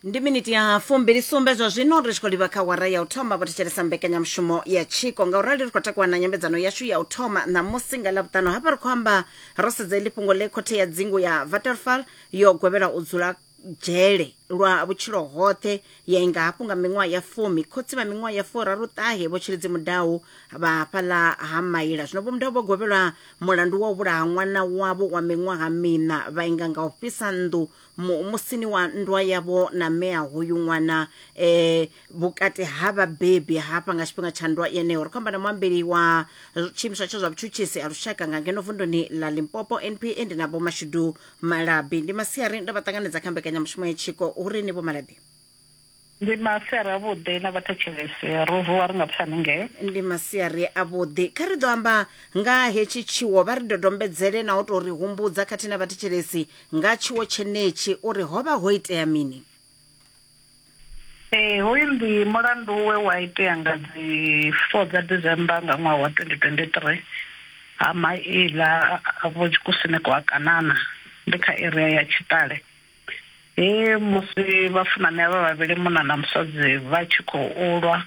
ndi miniti ya fumbili sumbe zwa zwino ri tshi khou livha kha wara ya u thoma vho thetshelesa mbekanyamushumo ya tshiko ngaurali ri khou takuwa na nyambedzano yashu ya u thoma ṋamusi nga ḽavhuṱanu hafha ri khou amba ro sedza iḽi fhungo ḽe khothe ya dzingu ya vaterfal yo gwevhela u dzula dzhele lwa vhutshilo hoṱhe ya inga hafhu nga miṅwaha ya fumi khotsi vha miṅwaha ya furaru ṱahe vho tshilidzi mudau vha hafhaḽa ha maila zwino vho mudau vho gwevhelwa Mulandu wa u vhulaha ṅwana wavho wa miṅwaha miṋa vha inga nga u fhisa nnḓu mu, musini wa nndwa yavho na mme a hoyu ṅwana e, vhukati ha vhabebi hafha nga tshifhinga tsha nndwa yeneyo. Ri khou amba na muambeli wa tshiimiswa tsha zwa vhutshutshisi ha lushaka nga ngeno vunduni ḽa Limpopo NPA ndi na Vho Mashudu Malabi. Ndi masiari ndo vha ṱanganedza kha mbekanyamushumo ya Tshiko Hu Ri Ni Vho Malabi. Ndi masia ri avhuḓi na vhathetshelesi. Ro vuwa ri nga pfani nge. Ndi masia ri avhuḓi. Kha ri ḓo amba nga ha hetshi tshiwo, vha ri dodombedzele na u tou ri humbudza khathihi na vhathetshelesi nga tshiwo tshenetshi uri ho vha ho itea mini. Ee, hoyu ndi mulandu we wa itea nga dzi 4 dza December nga ṅwaha wa 2023 ha maila a Vho Tshikusini kwa Kanana ndi kha area ya Tshitale. He musi vhafunani avha vhavhili munna na musadzi vha tshi khou lwa,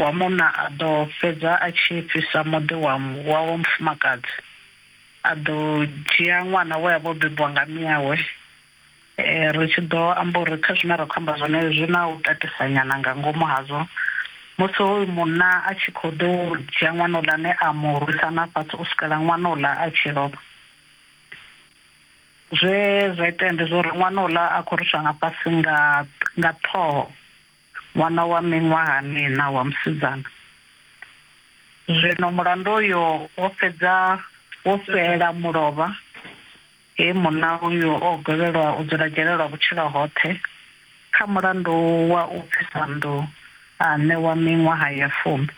wa munna a ḓo fhedza a tshi fhisa muḓi wa wawe mufumakadzi. A ḓo dzhia ṅwana we a vha o bebiwa nga mme awe. Ri tshi ḓo amba uri kha zwine ra khou amba zwone zwi na u tatisa nyana nga ngomu hazwo, musi hoyu munna a tshi kho ḓo dzhia ṅwana houḽani a mu rwisa na fhasi u swikela ṅwana houḽa a tshi lovha. Zwe zwa itea ndi zwa uri ṅwana uḽa a khou ruswa nga fhasi nga nga ṱhoho, ṅwana wa miṅwaha miṋa wa musidzana. Zwino mulandu uyo wo fhedza wo fhela mulovha he munna uyo o gwevhelwa u dzula dzhele lwa vhutshilo hoṱhe kha mulandu wa u pfisa nnḓu a ṋewa miṅwaha ya fumi.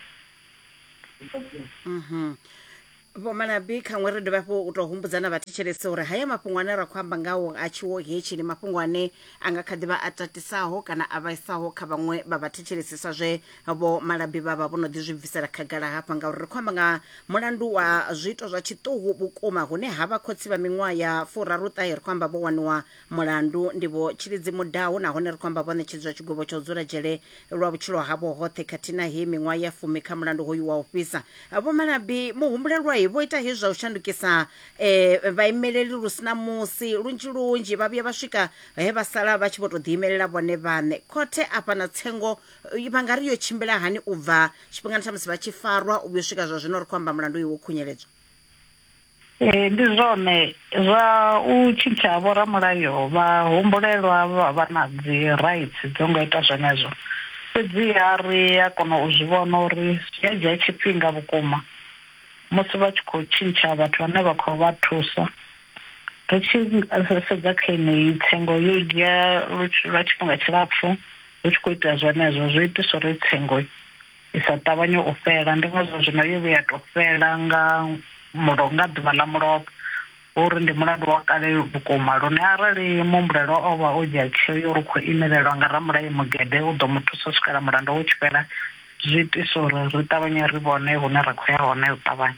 Vho Malabi, khaṅwe ri dovhe hafhu u tou humbudza na vhathetshelesi uri haya mafhungo ane ra khou amba ngawo a tshiwo hetshi ndi mafhungo ane a nga kha ḓi vha a tatisaho kana a vhaisaho kha vhaṅwe vha vhathetshelesi sa zwe Vho Malabi vha vha vho no ḓi zwi bvisela khagala hafha ngauri ri khou amba nga mulandu wa zwiito zwa tshiṱuhu vhukuma hune ha vha khotsi vha miṅwaha ya furaruṱahe ri khou amba vho waniwa Mulandu ndi vho Tshilidzi Mudau nahone ri khou amba vho ṋetshedzwa tshigwevho tsha u dzula dzhele lwa vhutshilo havho hoṱhe khathihi na heyi miṅwaha ya fumi kha mulandu hoyu wa u fhisa. Vho Malabi, muhumbulelwa, vho ita hezwi zwa u shandukisa e, vhaimeleli lu si na musi. Lunzhi lunzhi vha vhuya vha swika he vha sala vha tshi vho tou ḓiimelela vhone vhaṋe. Khothe afha na tsengo vha nga ri yo tshimbila hani u bva tshifhingani tsha musi vha tshi farwa u vhuya u swika zwa zwino ri khou amba mulandu uyu wo khunyeledzwa? Ee, ndi zwone zwa u tshintsha ha vhoramulayo vha humbulelwa vha vha na dzi rights dzo nga ita zwenezwo fhedziha ri a kona u zwi vhona uri zwi a dzhia tshifhinga vhukuma musi vha tshi khou tshintsha vhathu vhane vha khou vha thusa ri tshi sedza kha yeneyi tsengo yo dzhia lwa tshifhinga tshilapfhu hu tshi khou itea zwenezwo zwo itiswa uri tsengo. i sa ṱavhanye u fhela, ndi ngazwo zwino yo vhuya ya tou fhela nga mulo nga ḓuvha ḽa mulovha. Hu uri ndi mulandu wa kale vhukuma lune arali muhumbulelwa o vha o dzhia tsheo ya uri u khou imelelwa nga ramulayo mugede u ḓo mu thusa u swikela mulanda wo tshi fhela, zwi itisa uri ri ṱavhanye ri vhone hune ra khou ya hone u ṱavhanya.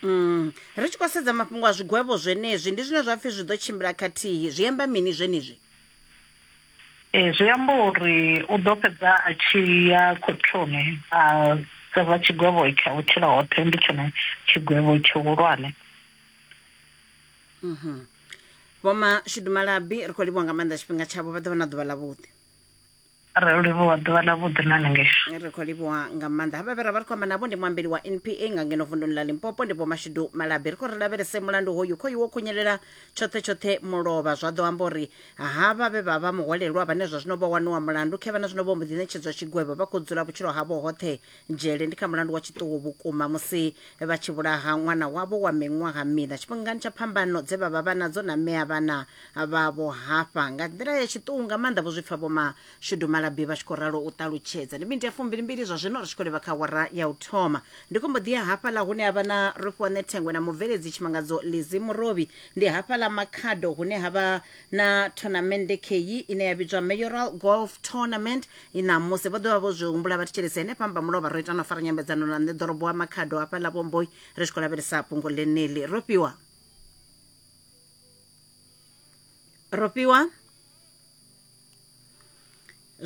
Umm. Ri tshi khou sedza mafhungo a zwigwevho zwenezwi, ndi zwine zwa pfi zwi ḓo tshimbila khathihi, zwi amba mini zwenezwi? Ee, zwi amba uri u ḓo fhedza a tshi ya khothoni a sevha tshigwevho tsha u tshila hoṱhe, ndi tshone tshigwevho tshihulwane. Mhm. Vho Mashudu Malabi ri khou livhuwa nga maanḓa tshifhinga tshavho vha ḓo vha na ḓuvha ḽavhuḓi. Ri livhuwa ḓuvha ḽa vhuḓi na hanengei. Ri khou livhuwa nga maanḓa havha vhe ra vha ri khou amba navho ndi muambeli wa NPA nga ngeno vunduni ḽa Limpopo ndi Vho Mashudu Malabi ri khou ri lavhelese mulandu hoyu khoyu wo khunyelela tshoṱhe tshoṱhe mulovha zwa ḓo amba uri Havha vhe vha vha muhwalelwa vhane zwa zwino vho waniwa mulandu khevha na zwino vho mbo ḓi ṋetshedzwa tshigwevho vha khou dzula vhutshilo havho hoṱhe dzhele ndi kha mulandu wa tshiṱuhu vhukuma musi vha tshi vhulaha ṅwana wavho wa miṅwaha miṋa tshifhingani tsha phambano dze vha vha vha nadzo na mme a vhana vhavho hafha nga nḓila ya tshiṱuhu nga maanḓa vho zwi pfa Vho Mashudu Malabi vha tshi khou ralo u ṱalutshedza. Ndi miniti ya fumbili-mbili zwa zwino ri tshi khou livha kha awara ya u thoma. Ndi khou mbo ḓi ya hafhaḽa hune ha vha na Rufhiwaṋe Thengwe na mubveledzi tshimangadzo Lizzie Murovhi Ndi hafha ḽa Makhado hune ha vha na thonamennde kheyi ine ya vhidzwa Mayoral Golf Tournament ṋamusi. Vho ḓo vha vho zwi humbula vha thetshelesi henefha Mbamulovha ro ita na u fara nyambedzano na nṋe ḓorobo wa Makhado hafha ḽa Vhomboi ri tshi khou lavhelesa fhungo ḽeneḽi. Rofhiwa? Rofhiwa?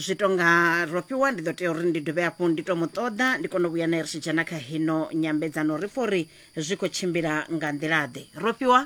zwi tonga ro fhiwa ndi ḓo tea uri ndi dovhe hafhu ndi to mu ṱoḓa ndi kone u vhuya naye ri tshi dzhena kha hino nyambedzano ri pfha uri zwi khou tshimbila nga nḓila ḓe ro fhiwa